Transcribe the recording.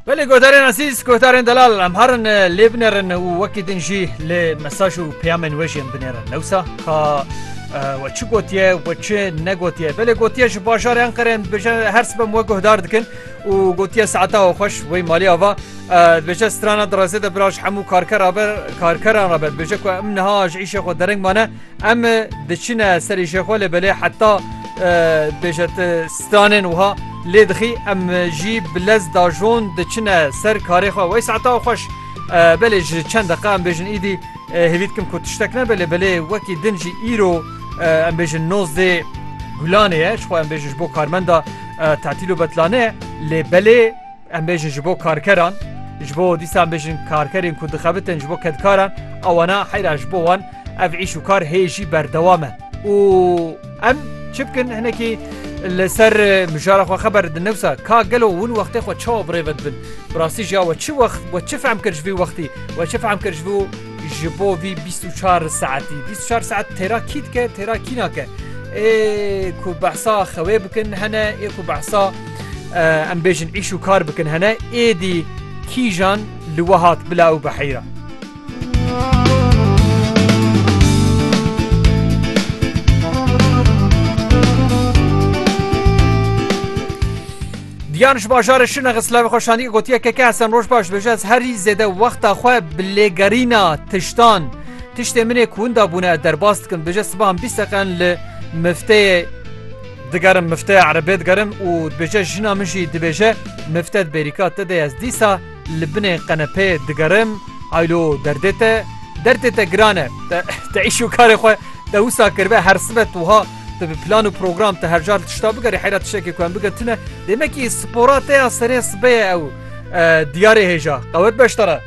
Belê godarên ezîz godarên delal em herin lê binêrin û wekî din jî lê mesaj û peyamên wê jî em binêrin newsa ka we çi gotiye we çi negotiye belê gotiye ji bajarê Enqerê dibêje her sibem we guhdar dikin û gotiye saeta we xweş wê malê ava dibêje strana direzê de biraj hemû karkera ber karkeran re ber dibêje ku em niha ji îşê xwe dereng mane Em diçine serê jêxwe lê belê heta bêje tu stranên wiha lê dixî em jî bi lez dajon diçine ser karê xwe wey saeta xweş belê ji çend deqa em bêjin îdî hêvî dikim ku tiştek nebe lê belê wekî din jî îro em bêjin nozdê gulanê ye ji xwe em bêjin ji bo karmenda tetîl û betlane lê belê Em bêjin ji bo karkeran, ji bo dîsa em bêjin karkerên ku dixebitin ji bo kedkaran awana heyra ji bo wan ev îş û kar hê jî berdewam e û em çi bikin hinekî li ser mijara xwe xeber didin newsa ka gelo hûn wextê xwe çawa birêve dibin. Bi rastî jî ya we çi wext we çi fehm kir ji vî wextî we çi fehm kir ji vî Ji bo vî bîst û çar saetî bîst û çar saet têra kî dike têra kî nake ê ku behsa xewê bikin hene ê ku behsa em bêjin îş û kar bikin hene êdî kîjan li we hat bila û beheyra. Diyan ji bajarê Şirne xist lawê xwe şandî û gotiye KK Hesen Rojbaş dibêje ez herî zêde wexta xwe bi lêgerîna tiştan tiştê min ê ku winda bûne ez derbas dikim dibêje sibahan bîst deqen li mifteyê digerim mifteya erebê digerim û dibêje jina min jî dibêje mifte di bêrîka te de ez dîsa li binê qenepeyê digerim haylo derdê te derdê te giran e te te îş û karê xwe te wisa kiribe her sibe tu ha Tu bi plan û program te her car tişta bigerî heyra tişekê ku em bikin tune demekî spora te ya serê sibê ye ew diyarê hêja qewet beştara.